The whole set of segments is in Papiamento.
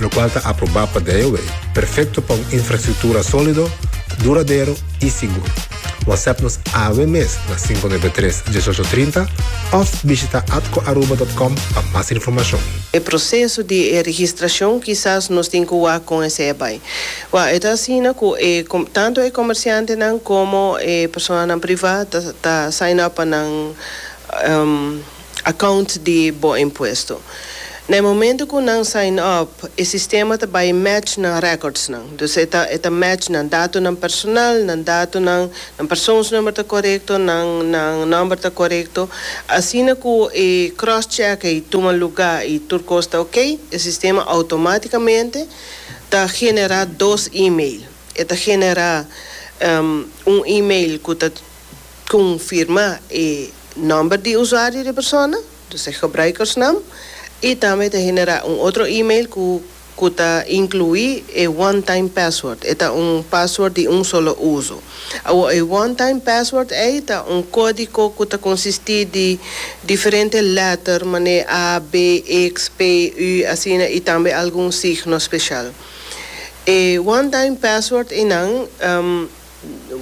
lokual ta aprobá pa DOW, perfekto pa un infrastruktura sólido, duradero i sigur. Whatsapp nos awe mes na sinku nebe tres, dieshocho trinta òf bishita atcoaruba dòt com pa mas informashon. E proseso di e registrashon kisas nos tin ku wak kon esei bai. Wak e ta asina ku e tantu e komersiantenan komo e personanan privá ta ta sign up pa nan. account di bo impuesto. Na e momento cu nan sign up e sistema ta bay match nan records nan. Dus e ta e ta match nan datonan personal, nan datonan, nan persoonsnumber ta corecto, nan nan number ta corecto. Asina cu e cross check ey tuma lugar y tur cos ta ok, e sistema automaticamente ta genera dos email. E ta genera un email cu ta confirma e. Nomber di usuario di persona, dus e gebruikersnaam, i tambe ta generá un otro email ku ku ta inkluí e one time password, e ta un pasword di un solo uso. Awor e one time password ei ta un kódiko ku ta konsistí di diferente lèter manera a, be, iks, pe, ü, asina i tambe algun signo speshal. E one time password einan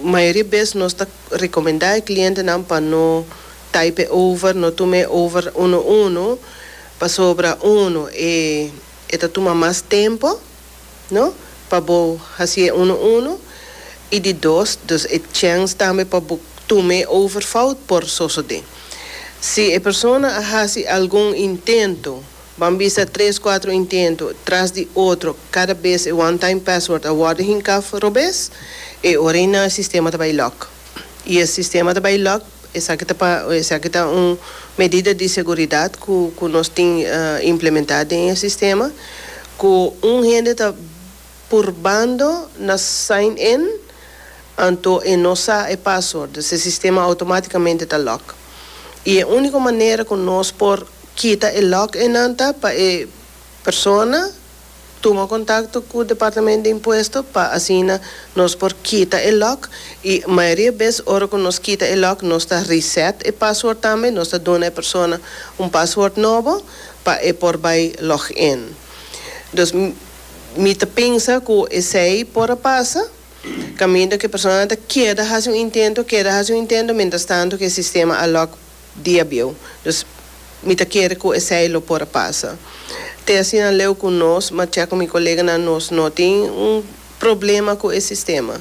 Mayoria bes nos ta recomenda e clientenan pa no type over, no tuma e over uno uno, pasobra uno e e ta tuma mas tempo, no, pa bo haci e uno uno, y di dos, dus e chance tambe pa bo tuma e over fout por sosode. Si e persona a haci algun intento. Ban bisa tres kuatro intento tras di otro kada bes e one time password a worde hinká for robes e ora ei nan e sistema ta bai lock i e sistema ta bai lock esaki ta pa esaki ta un medida di seguridat ku ku nos tin implementá den e sistema ku un hende ta purbando na sign in anto e no sa e password dus e sistema automaticamente ta lock y e unico manera cu nos por kita e lock eynan ta pa e persona tuma contacto cu departamento de impuesto pa asina nos por kita e lock y mayoria bes ora cu nos kita e lock nos ta reset e password tambe nos ta duna e persona un password nobo pa e por bay log in dus. Mi ta pensa ku esei por a pasa, kaminda ku e personanan ta keda hasi un intento, keda hasi un intento, mientras tanto ku e sistema a lòk diabieu. Dus, mi ta kere ku esei lo por a pasa. Te asina leu ku nos, mach'e ku mi koleganan, nos no tin un problema ku e sistema.